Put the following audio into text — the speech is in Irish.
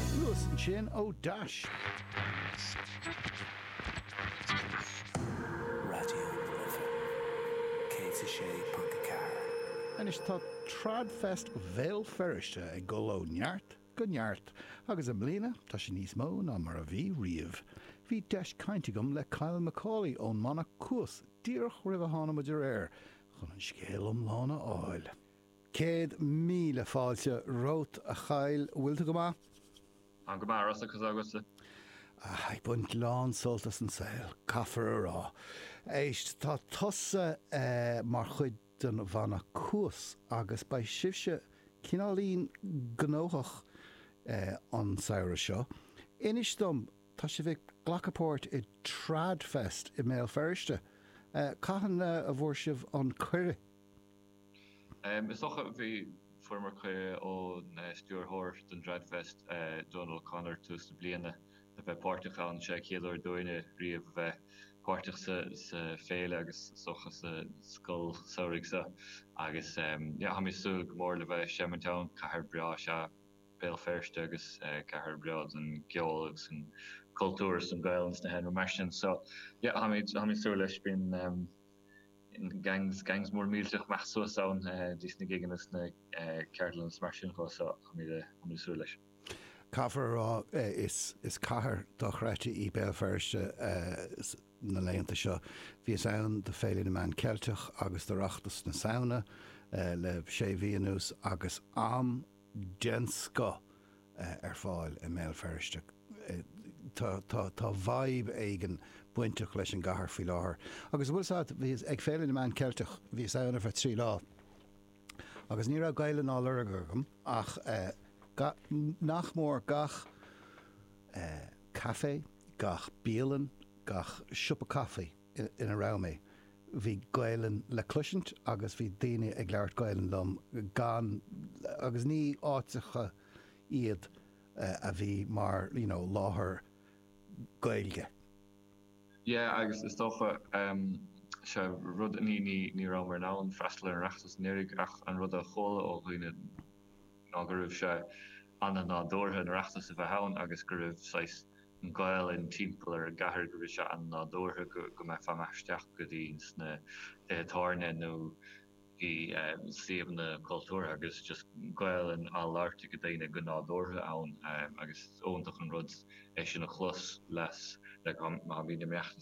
Thuas ansin ó dheas. Raidió na Life 106.4. Anois tá TradFest Bhéal Feirste ag dul ó neart go neart agus i mbliana tá sé níos mó ná mar a bhí riamh. Bhí deis cainte agam le Kyle Macaulay ón mbanna Cuas díreach roimh a tháinig muid ar aer chun an scéal iomlán a fháil. Céad míle fáilte romhat, a Kyle. Bhfuil tú go maith? Táim go maith, Russell, conas tá agatsa? Ag baint lán sult as an saol, caithfear a rá. Éist, tá tusa mar chuid den bhanna Cuas agus beidh sibhse cineáilín gnóthach an samhradh seo. Inis dom, tá sibh ag glacadh páirt i Tradfest i mBéal Feirste. Cathain a bhfuair sibh an cuireadh? Is dócha bhí, fuaireamar cuireadh ón stiúrthóir don dTradfest, Donal O'Connor, tús na bliana le bheith páirteach ann. Is é an chéad uair dúinne riamh a bheith páirteach sa bhféile agus is dócha sa scoil samhraidh seo agus táimid ag súil go mór le bheith ag seimint ann. Cathair breá is ea Béal Feirste agus cathair bhreá don gceol agus an cultúr is don Ghaelainn is na healaíona mar sin. So táimid ag súil leis. Bíonn. Gangs, gangs móra millteacha ag imeacht suas ann go dtí sna gigeanna is na ceardlanna is mar sin de so táimid ag súil leis. Caithfear a rá is cathair dochreidte í Béal Feirste na laethanta seo. Bhíos ann do Féile na Meán Ceilteach agus d'Oireachtas na Samhna le sé mhí anuas agus am den scoth ar fáil i mBéal Feirste. Tá vibe éigin bainteach leis an gcathair faoi láthair. Agus an bhfuil a fhios agat, bhíos ag Féile na Meán Ceilteach, bhíos ann ar feadh trí lá agus ní raibh Gaelainn á lorg agam ach nach mór gach café, gach bialann, gach siopa caife, ina raibh mé, bhí Gaelainn le cloisint agus bhí daoine ag labhairt Gaelainn liom gan, agus ní áiteacha iad a bhí mar you know láthair Gaeilge. Yeah agus is dócha ehm sea rud, ní, ní, ní rabhamar in ann freastal ar an Oireachtas in aon chor ach an rud a chualamar ó dhaoine ná go raibh sé ana-nádúrtha an tOireachtas a bheith ann agus go raibh saghas, Gaelainn timpeall ar an gcathair go raibh sé an-nádúrtha go mbeadh fáil amach is isteach go dtí sna tithe tábhairne nó go dtí suíomhanna cultúrtha agus just Gaelainn á labhairt ag daoine go nádúrtha ann agus is iontach an rud é sin a chlos le gach aon ní. Má bhíonn an tOireachtas